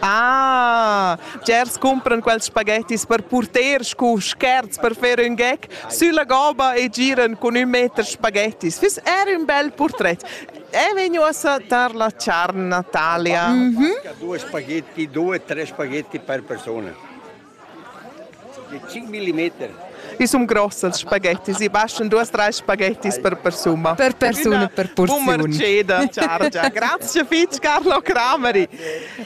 Ah, Gers cumpran quels spaghettis per purter scu scherz per fer ün gec sülla goba e giran cun ün meter spaghettis. Füss er ün bel purtret. È vegnu a tar la charn Natalia. Mm -hmm. Due spaghetti, due, tre spaghetti per persona. Ils sum gross als spaghettis, i bastan duas trais spaghettis per persuna. Per persuna per purziun. Bumerceda chargia. Grazie fitg Carlo Crameri.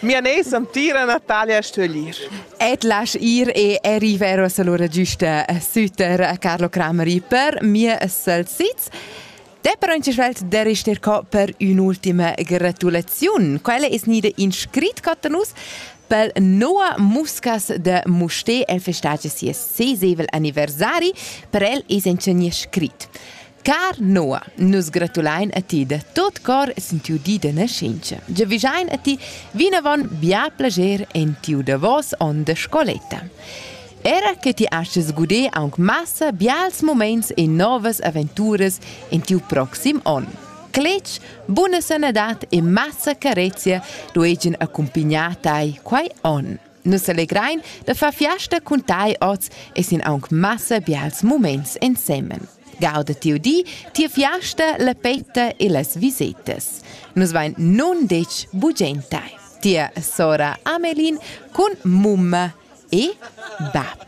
Mia nes am tira Natalia a stöglir. Et lasch ir e arrivero salura giusta süter a Carlo Crameri per mia salsizz. Te però in svelt der ist dir per un'ultima gratulaziun. Quella è snida in scrit a nus pel Noa Muscas de Mustè el festage sies sesevel anniversari per el es in nie scrit. Car Noa, nus gratulain a ti da tot cor sin tiu di de nascenza. Già vigiain a ti vinavon bia plager en tiu davos on de scoletta. Era che ti astgas guder aunc massa bials muments e novas aventuras en tiu proxim onn. Cletg, buna sanadad e massa carezia dueigien accumpignar tai quei onn. Nus allegrein da far fiasta cun tai oz e sin aunc massa bials muments ensemen. Gauda tiu di, tia fiasta, la petta e las visetas. Nus vein nun detg bugen tai. Tia sora Amelin cun mumma E bap.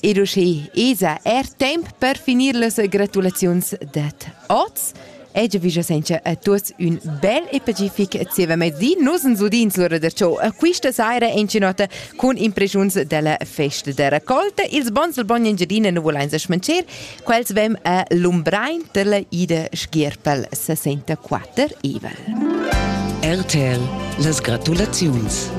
Ed uschè esa er temp per finir las gratulaziuns dad oz. E già vija senza a tuots ün bel e pacific zievamezdi. Nus ens udins l'ora da ciò quista saira in cinota cun impreschiuns della festa da raccolta. Ils bons del bogn Engiadina nu volains smancher Quels vem a Lumbrein per la Ida Schierpel 64 Evel. RTL las gratulaziuns.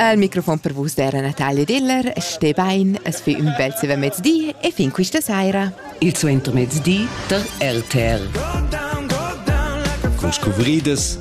Al microfon per vus era Natalia Diller, ste bein, es fi un bel seva mezdi e fin quista saira. Il suenter mezdi tar RTL. Con scuvriedes